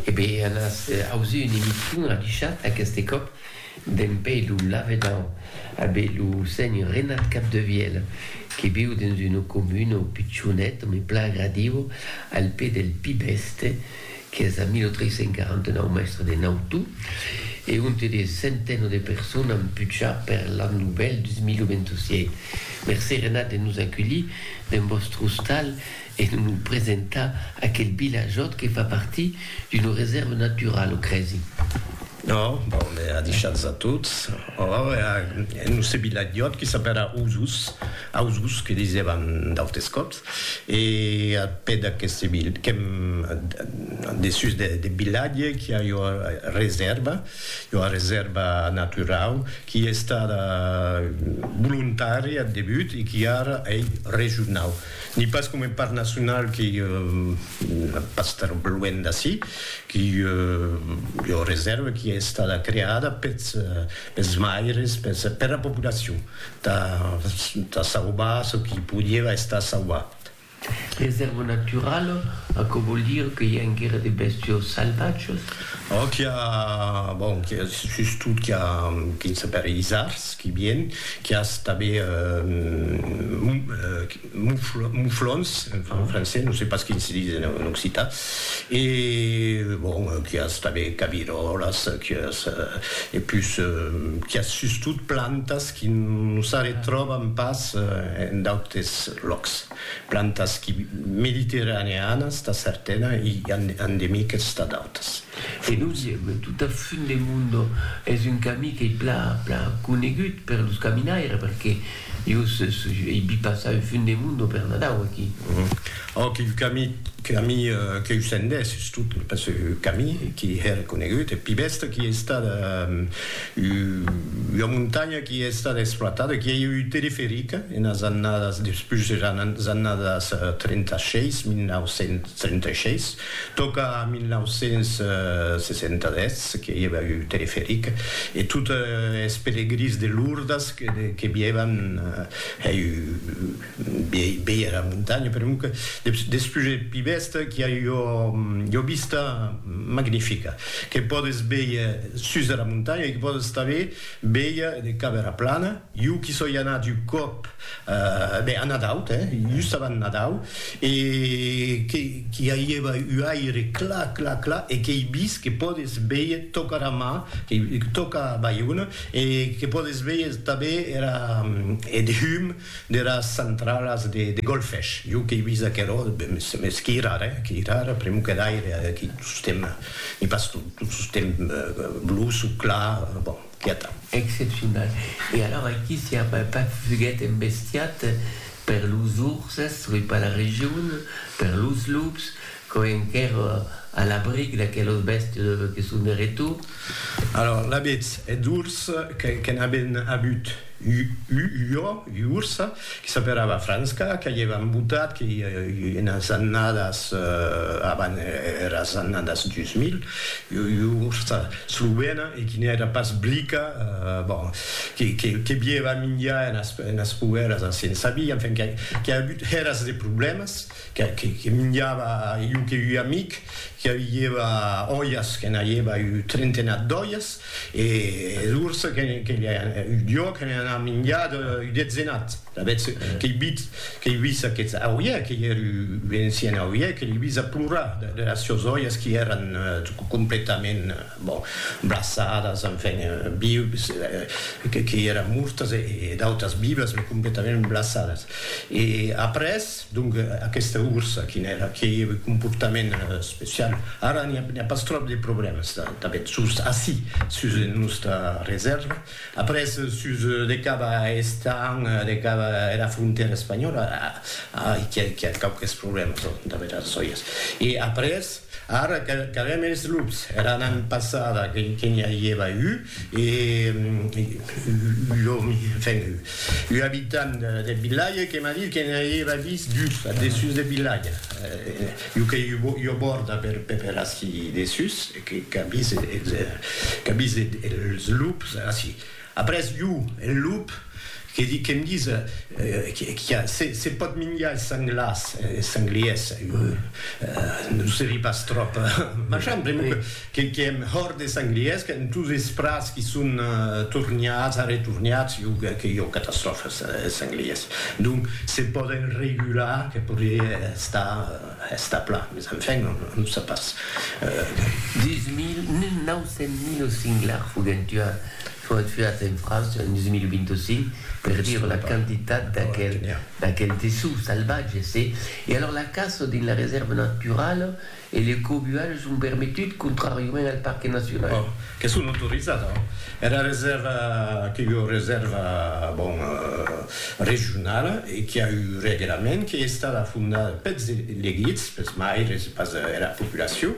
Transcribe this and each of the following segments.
E be anas aus un emission adichat aqueste còp d'en be lo lavedan a be lo senhor Renat Capdevielle que viu dens un comuno pichonet me plan agradiu al pè del Pi Bèste qu'es a 1349 mèstre de Nautu e onte de centeno de persona an puchat per l'an novèl 2027. Mercé Renat de nos aculhir dens vòstre ostal E non lo presentar aquel vilajòt que fa partir d'una resèrva naturala, o crèsi? No, bon, me a deishats a tots. Or, e a nos ce vilajòt que s'apèra Osos, Ausos que disèvan d'autes còps, e a pè d'aqueste vil, qu'èm dessús deth vilatge, qu'i a ua resèrva, ua resèrva naturau, qui estada volontària ath debut e qui ara ei regionau. Ni pas coma un parc nacional qui pas tan luènh d'ací, qui ei ua reserva qui ei estada creada pels maires, per la populacion, tà sauvar çò qui podieva estar sauvat. Reserva naturala, aquò vòl dire que i a enguera de bèstios salvatges? Ò, qu'i a, bon, qu'i a sustot qu'i a quin sapèri isards qui vien, qu'i as tabé mouflons, enfin en français, non se pas quin se dis en occitan, e bon, qu'i as tabé caviròlas, qu'i as, e pus, qu'i as sustot plantas qui non s'arretròban pas en d'autes lòcs. Plantas qui mediterraneanas tà certana i endemiques tà d'autas. E nos ièm tot a fund de Mundo, es un camí qu'ei plan plan conegut per los caminaires perque jo ei vist passar un fund de Mundo per Nadau aquí. Òc, il camí camí qu'eu sendés es tot pas un camí qui hè reconegut, eth pi bèsta qui ei estat Ua montanha qui a estat exploitada, qui ei ua periferica enas annadas, despús eras annadas 36, 1936, tòca a 1967 que i eva ua periferica e tot es pelegrins de Lourdes que vievan hèi. Viei era montanha per un despús eth pi bèsta qu'i a ua vista magnifica que pòdes véier sus dera montanha e que pòdes tanben véier de cap era plana. Jo qu'i soi anat un còp ben a Nadau, just abans Nadau e qu'i aieva un aire clar, clar, clar e qu'ei vist que pòdes véier tòca era mar, tòca Baiona e que pòdes véier tanben era eth hum deras centralas de golfesh, jo qu'ei vist aquerò, mès qu'ei rara, eh, qu'ei rara, pr'amor que d'aire, aqui tostemp, n'i pas tot, tot tostemp bluç o clar, bon, qu'i atau. Excepcional. E alors aquí s'i a pas fuguet embestiat per los urses, soi pas la region, per los lups, Quò enquèr a l'abric d'aquelos bèstes que son de retor. Alòr, l'abetz eth urs que n'aben abut u jo, ua ursa, que s'aperava Franska, que i èvan botat, que i enas annadas avan eras annadas 2000, ua ursa slovena e que n'èra pas blica, bon, que bièva minjar enas poèras a Sensabí, enfin, qu'a abut eras de problèmas. que minjava iu que ui amic que aviieva oias que n'aieva iu trentenat d'oias e es urs que iu diò que n'an a minjat iu detzenat d'avetz que ei vit que ei vis aqueth auier que ei er iu encien auier que l'ei vis a plorar de las sios oias qui eran completament bon braçadas enfin vius que ei eran mortas e d'autas vivas me completament braçadas e après Donc aquesta ursa quin èra? Qué comportament especial? Ara n'i a pas tròp de problèmas tanben sus ací, sus nosta resèrva. Après sus de cap a Estañ, de cap era frontèra espanhòla, ai qu'i a quauques problèmas tanben las sòias. E après ara qu'avèm es lups, era annada passada que n'i a ieva un, E ua abitant deth vilatge que m'a dit que ne hèiva vist dus ath dessús deth vilatge, ua qu'ei ua bòrda per ací dessús, qu'a vist es lups ací. Après, ua, eth lup, Que di que'm dis qu'a se pòt minjar es sanglars, es sangliers, non se ri pas tròp marchand, pr'amor que qu'èm hòrt des sangliers, qu'èm tous es prats qui son torniats, arretorniats, jo que que jo catastròfa es sangliers. Donc se pòden regular que podrie estar estar plan, mes enfin non non se pas. 1900 mil los singlars foguèn tuats. Foguèt fiat en França en 2025 per dire la quantitat d'aquel tessut salvatge, se. E alors la caça dins la resèrva naturala e le cobuatge son permetut contràriament al parque nacional. Bon, que son autorizat, hein. Era resèrva qu'ei ua resèrva, bon, regionala e qui a un reglament, qui ei estada fondada peths elegits, peths maires e pas era populacion.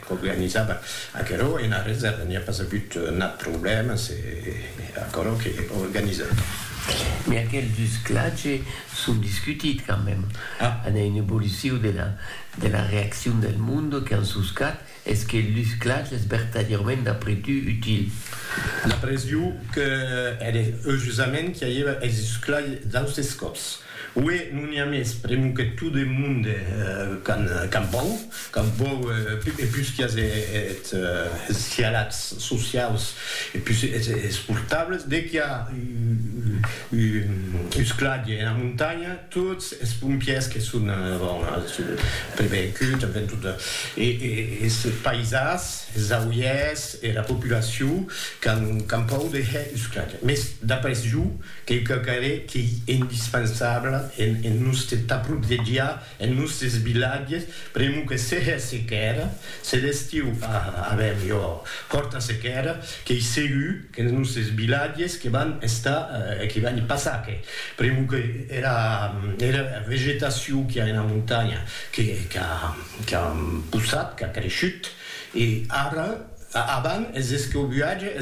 qu'organizava aquerò ena resèrva n'i a pas agut nat problèma, se aquerò que organizava. Mès aquel dus clatge son discutit quand même, an a un evoluciu de la de la reaccion del monde qu'an soscat es que el dus clatge es vertadièrament d'après tu util? D'après jo que ère eujusament qu'i aieva es dus clatge d'austes còps. Ué, non i a mès pr'emu que tu de monde qu'an vòu, qu'an vòu e pus qu'i as eth cialats sociaus e pus es portables, de qu'i a un scladge ena montanha, tots es pompiers que son bon prevencuts, en fin, tot es paisans, es auiers, era populacion qu'an pòu de hèr un scladge. Mès d'après jo, Qu'ei quauquarren qu'ei indispensaabla en en nustes taprotzegiar en nustes vilatges, pr'amor que se hè sequèra, se l'estiu a avèm jo fòrta sequèra, qu'ei segur qu'en nustes vilatges que van estar e que van i passar que, pr'amor que era era vegetacion qu'i a ena montanha que qu'a qu'a possat, qu'a creishut, E ara, avant, es escobuatge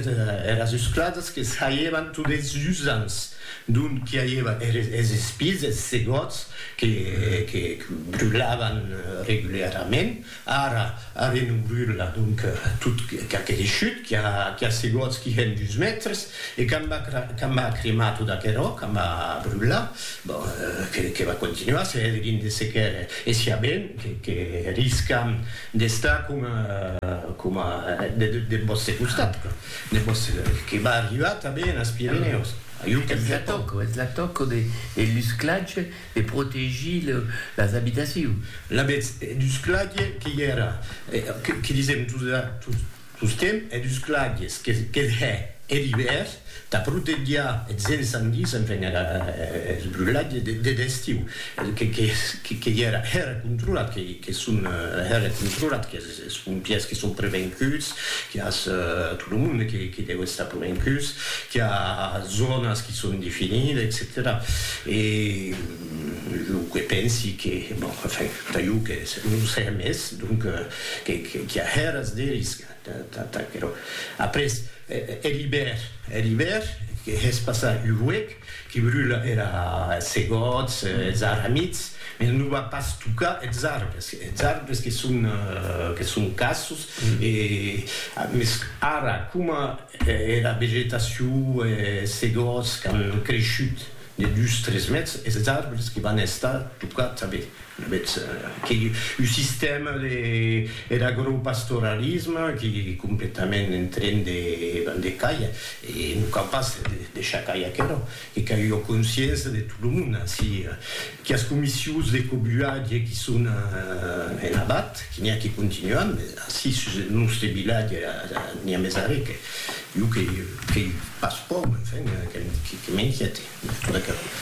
eras uscladas que saievan tot es usants, dont qu'i aieva es espies, es segòts que brulavan regularament, ara arren o brula, donc tot qu'a creishut, qu'i a segòts qui hèn dus mètres, e quand va cremar tot aquerò, quand va brular, bon, que va continuar, se hèdrien de sequer, e siá ben que riscam D'estar coma, coma, deth vòste costat, deth vòste, que va arribar tanben enes Pirenèus, jo qu'èm catòlic. Es la tòca de l'usclatge de protegir las abitacions. Lavetz, d'usclatge que i èra, que disèm Sustem eth usclatges qu'eth hè er ivèrn tà protegiar eths encendis, enfin era eth brulatge deth estiu que i era hèra controlat, que son hèra controlat, que es pompièrs que son prevencuts, que as tot lo monde que deu estar prevencuts, que a zònas que son definides, etcetèra E jo que pensi que, bon, enfin, tà jo que non se hè mès, donc Qu'i a hèras de risca, t'aquerò. Après, er ibèr, er ibèr, que hè's passar un huec, que brula era segòts, es arramits, mès non va pas tocar es arbres, es arbres que son, que son cassos, e, mès ara, coma era vegetacion, es segòts qu'an creishut de dus, tres mètres, es arbres que van estar tocats tanben. Avètz aquí un sistèma de er agropastoralisme qui completament en tren de vender caia e non cau pas deishar cair aquerò que cau ua consciença de tot lo monde ací quias comissions de cobuatge qui son en abat qui n'i a qui continuan mes ací sus eth nòste vilatge n'i a mes arrè que jo que que passo pòu enfin que que m'inquiète.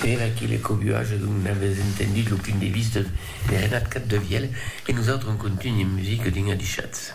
Per aquí le cobuage d'un avès entendit lo punt de vista de Renat Capdevièlh e nosautres en contunh de musica dins Adichatz.